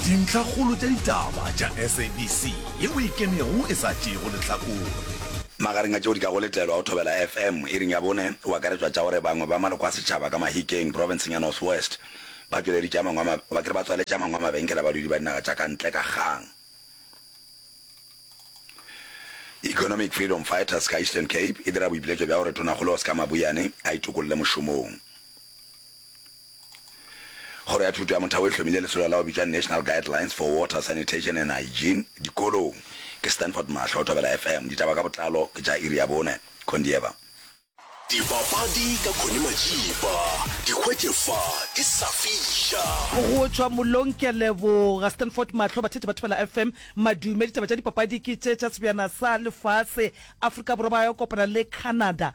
Dintlhakgolo tša ditaba tša SABC ye o e kenego e sa tšeego lehlakore. Magareng a tšeo di ka go letelwa go thobela FM iring ya bone go akaretšwa tša gore bangwe ba maloko a setšhaba ka Mahikeng profenseng ya North West ba tšweleditše a mangwe a ba kere ba tswaletše a mangwe a mabenkele a badudi ba dinaga tša ka ntle ka kgang. Economic Freedom Fighters ka Eastern Cape e dira boipiletšo bja gore Tonakgolo Oscar Mabuyane a itokolle mošomong. Kgoro ya Thuto ya Motheo e hlomile lesolo la go bitšwa National Guidelines for Water, Sanitation and Hygiene dikolong. Ke Stanford Mahlo, Thobela FM. Ditaba ka botlalo ke tša iri ya bone. Condieva. Dipapadi ka Connie Majiba, di hwetše fa ke sa fiša. Go tšwa mollong ke a leboga. Stanford Mahlo, Batheetši ba Thobela FM, madume. Ditaba tša dipapadi ke tše tša sebjana sa lefase. Afrika Borwa ba yo kopana le Canada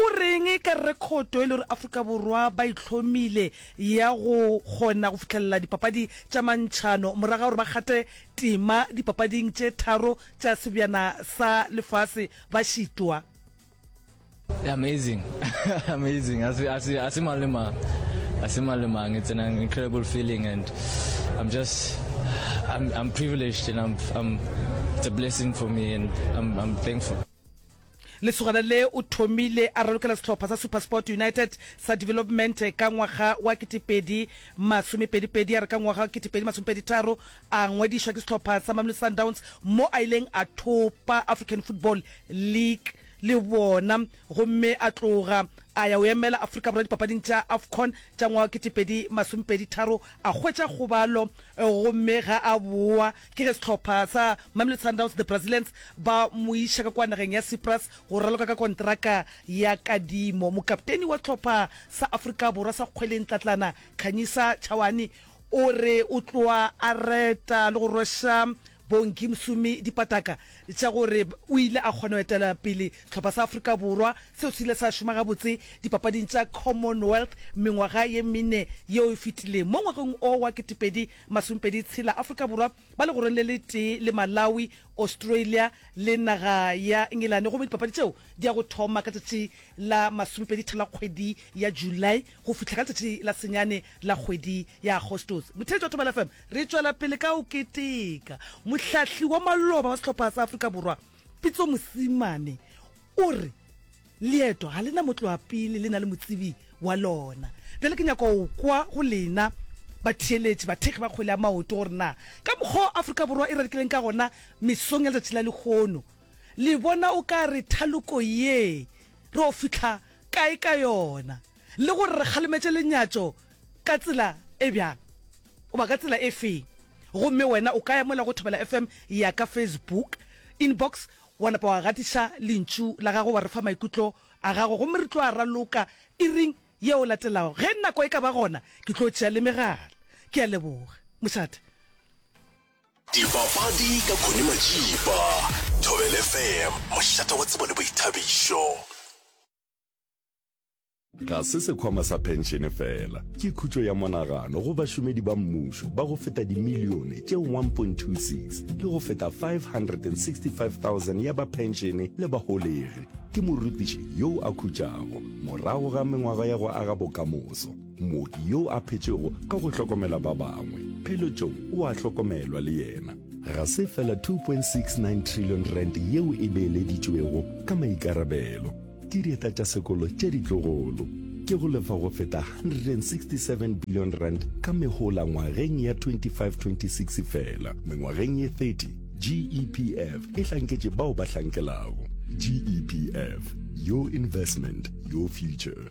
O reng ka rekhoto e le gore Afrika Borwa ba e hlomile ya go kgona go fihlelela dipapadi tša mantšhano morago ga gore ba kgathe tema dipapading tše tharo tša sebjana sa lefase ba šitwa? Amazing amazing ha se ha se ha se mang le mang ha se mang le mang it's an incredible feeling and I'm just I'm I'm privileged and I'm I'm it's a blessing for me and I'm I'm thankful. Lesogana le o thomile a ralokela sehlopha sa Supersport United sa Development ka ngwaga wa ketepedi masomepedipedi, a re ka ngwaga wa ketepedi masomepeditharo a ngwadišwa ke sehlopha sa Mamelodi Sundowns mo a ileng a thopa African Football League le bona gomme a tloga a ya o emela Afrika Borwa dipapading tša Afcon tša ngwaga wa ketepedi masomepeditharo a hwetša kgobalo gomme ga a boa Ke ge sehlopha sa Mamelodi Sundowns The Brazilians ba mo iša ka kua nageng ya Cyprus go raloka ka konteraka ya kadimo. Mokapteni wa sehlopha sa Afrika Borwa sa kgweleng Tlatlana Khanyisa Tshawane o re o tloa a reta le go rweša Bongi Msomi dipataka tša gore o ile a kgona go etela pele sehlopha sa Afrika Borwa seo se ile sa šoma gabotse dipapading tša Commonwealth mengwaga ye mene yeo e fetileng. Mo ngwageng o wa 2000, Masumpedi tshela Afrika Borwa ba legoreng le le tee le Malawi, Australia le naga ya Engelane gomme dipapadi tšeo di ya go thoma ka tšatši la masumpedi tharo la kgwedi ya July go fihla ka letšatši la senyane la kgwedi ya Agostose. Motheetši wa Thobela FM, re tšwela pele ka go keteka. Mohlahli wa maloba wa sehlopha sa Afrika Borwa Pitso Mosimane o re. Leeto ga le na motloapele, le na le motsebi wa lona. Bjale ke nyaka go kwa go lena batheeletši, bathekgi ba kgwele ya maoto, gore na ka mokgwa o Afrika Borwa e rarikileng ka gona mesong ya letšatši la lehono, le bona o ka re thaloko ye re yo fihla kae ka yona, le gore re kgalemetše lenyatšo ka tsela e bjang goba ka tsela e feng. Gomme wena o ka ya mola go Thobela FM ya ka Facebook inbox Wa napa wa gatiša Lentšu la Gago, wa re fa maikutlo a Gago, gomme re tlo a raloka iring yeo latelago, ge nako e ka ba gona. Ke tlo tšea le megala. Ke a leboga, mošate. Dipapadi ka Connie Matšipa, Thobela FM, mošate wa tsebo le boithabišo. Ga se sekhwama sa phenšene fela, ke khutšo ya monagano go bašomedi ba mmušo ba go feta dimilione tše 1.26 le go feta 565,000 ya ba phenšene le baholegi. Ke morutiši yoo a khutšago morago ga mengwaga ya go aga bokamoso, mooki yoo a phetšego ka go hlokomela ba bangwe, pheletšong o a hlokomelwa le yena. Ga se fela 2.69 trillion rand yeo e beeleditšwego ka maikarabelo, Ke dieta tša sekolo tše ditlogolo. Ke go lefa go feta R167 billion ka mehola ngwageng ya 25-26 fela. Mengwageng ye 30, GEPF e hlanketše bao ba hlankelago. GEPF, your investment, your future.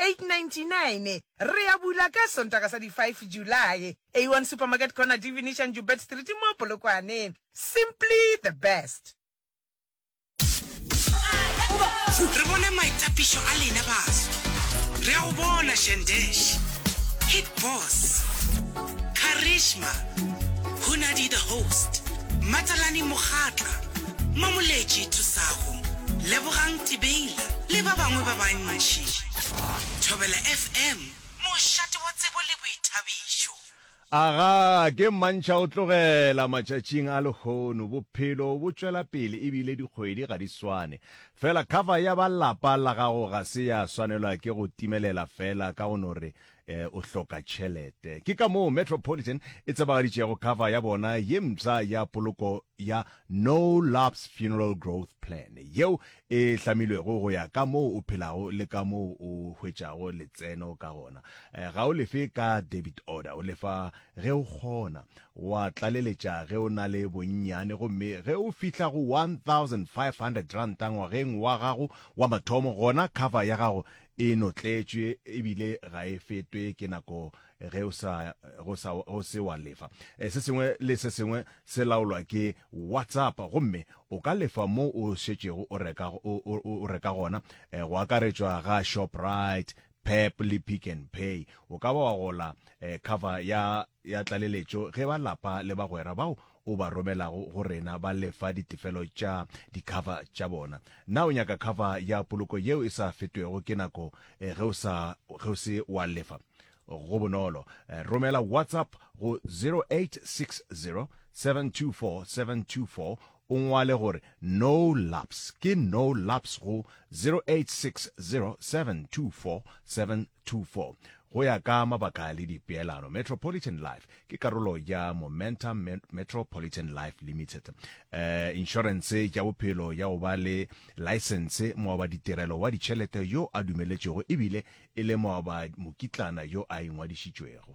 899 re a bula ka Sontaga sa di 5 Julae, A1 Supermarket Corner, Divinician Joubert Street mo Polokwane. Simply the best! Re bone maitapišo a lena baso. Re a go bona Shandesh, Hit Boss, Karishma, Hunadi the Host, Matalani Mogatla, Mamoletši Thusago, Lebogang Tibeila le ba bangwe ba bantši. Thobela FM, mošate wa tsebo le boithabišo. Aga ke mmantšha o tlogela matšatšing a lehono. Bophelo bo tšwela pele e bile dikgwedi ga di swane. Fela cover ya ba lapa la gago ga se ya swanelwa ke go timelela fela ka go no re E, o hloka tšhelete. Ke ka moo Metropolitan e tsebagaditšego cover ya bona ye mpsha ya poloko ya No Lapse Funeral Growth Plan, yeo e hlamilwego go ya ka moo o phelago le ka moo o hwetšago letseno ka gona. E, ga o lefe ka debit order, o lefa ge o kgona. Wa tlaleletša ge o na le bonnyane gomme ge o fihla go R1,500 ngwageng wa gago wa mathomo, gona cover ya gago E notletšwe ebile ga e fetwe ke nako ge o sa go sa go se wa lefa. E, se sengwe le se sengwe se laolwa ke WhatsApp gomme o ka lefa mo o šetšego o reka o, o, o reka gona e, go akaretšwa ga Shoprite, Pep le Pick n Pay. O ka ba wa gola e, cover ya ya tlaleletšo ge ba lapa le bagwera bao o ba romelago go rena ba lefa ditefelo tša dikhava tša bona. Na o nyaka khava ya poloko yeo e sa fetwego ke nako ge o sa ge o se wa lefa? Go bonolo. Romela WhatsApp go 0860 724 724 o ngwale gore no laps ke no laps go 0860724724 go ya ka mabaka le dipeelano metropolitan life ke karolo ya momentum metropolitan life limited uh, insurance ya bophelo ya go ba le license moaba ditirelo wa ditšhelete yo a dumeletšego ebile e le moaba mokitlana yo a ingwadišitšwego